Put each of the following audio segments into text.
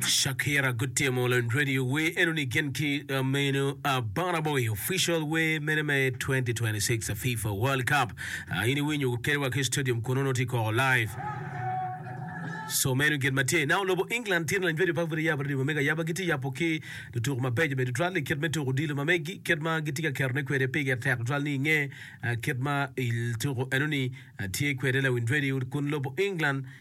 Shakira gutimo lony radio wer eno ni gin ki uh, meno uh, Burna Boy official wer mene me 2026 uh, FIFA World Cup uh, in iwinyo gukedewa ki stadium kun ono tye koko live so meno gin ma tye now lobo England tye lony radio pa bute yabo radio ma mega yaba gitye yabo ki lutuku mabeco bene tutwal ni kit me tuku odilo ma megi kit ma gitye ka ketone kwede pige tek tutwal ni inge uh, kit ma il tuku eno ni uh, tye kwede lawiny radio kun lobo England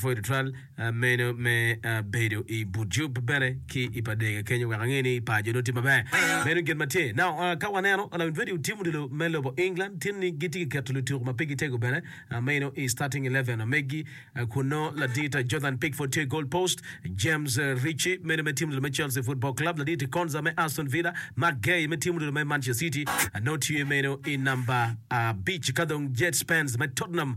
Pud tutwal meno me bedo i but Jup bene ki i pa Dega kenyo wek ange ni par jo onongo tye maber. Meno gin ma tye. Now, ka waneno lamin radio tim odilo me lobo England tin ni gitye ka keto lutuku ma pigi tego bene meno i starting eleven ma megi kun nongo ladit Jordan Pickford tye i goal post, James Ritchie meno me tim odilo me Chelsea Football Club, ladit Konsa me Aston Villa, Marc Guehi me tim odilo me Manchester City nongo tye meno i namba abic ka dong Jed Spence me Tottenham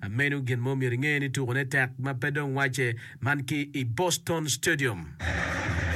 Amenu gin mo myero inge ni tukone tek ma pe dong wacce man ki i Boston Stadium.